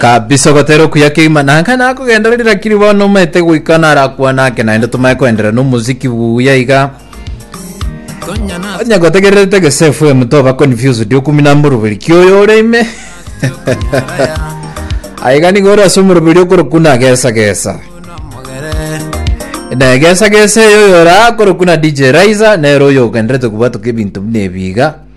kabisa ogotera okuya keima nanka nakogendereri lakini bono omete goika narakwana ake naende tomae koenderera na omuziki buya iga onye gotegererete gese fm toba confused okumi na moroberi kioyo ore ime aiga nigo ore ase omoroberi okorokuna gesa gesa na gesa gesa eyo oyo orakoro kuna dj raiza nero oyo ogenderete kobwatoka ebinto buna ebiga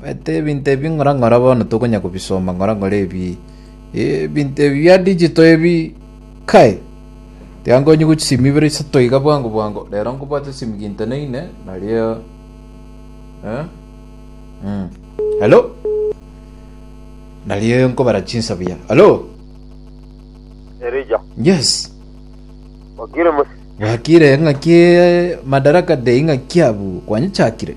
Omanyete ebinto ebi ng'ora ng'ora bono tokonya kobisoma ng'ora ng'ora ebi ebinto ebi bia digital ebi kai. Tiga nkonyigwe chisimi ibere isato iga bwango bwango rero nkobwate esimi ginto ne ine nario eh mm. Hello? Nario nkobara chinsa buya. Hello? Erija. Yes. Wakire musi. Wakire ng'aki Madaraka Day ng'aki abu kwanyichakire.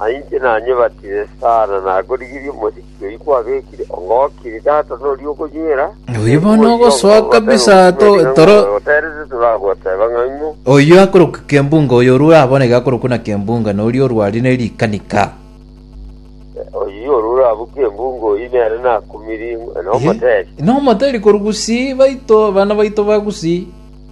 Aye inche nanyebatire sana, nagorigirie omosiki oyio kwabekire, ongokiri tata noria okonywera. Oyio bono ogosoa kabisa to- toro- Oterete toragoteba ng'a ng'o. oyio akorokwa kembunga oyo orure aboneke akorokwa na kembunga noria orwarie ne rikanika Oyio orure abwo kembunga oyio nere nakumirie ng'a nomoteri. nomoteri korwa gusii baito bana baito ba gusii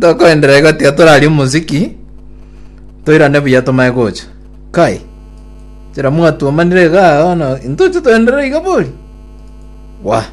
Tokoenderera igo tiga torarie omosiki toirane buya tomae gocha. Kai. Chira mwatuomanire iga bono intoche toenderere iga bori. Wa.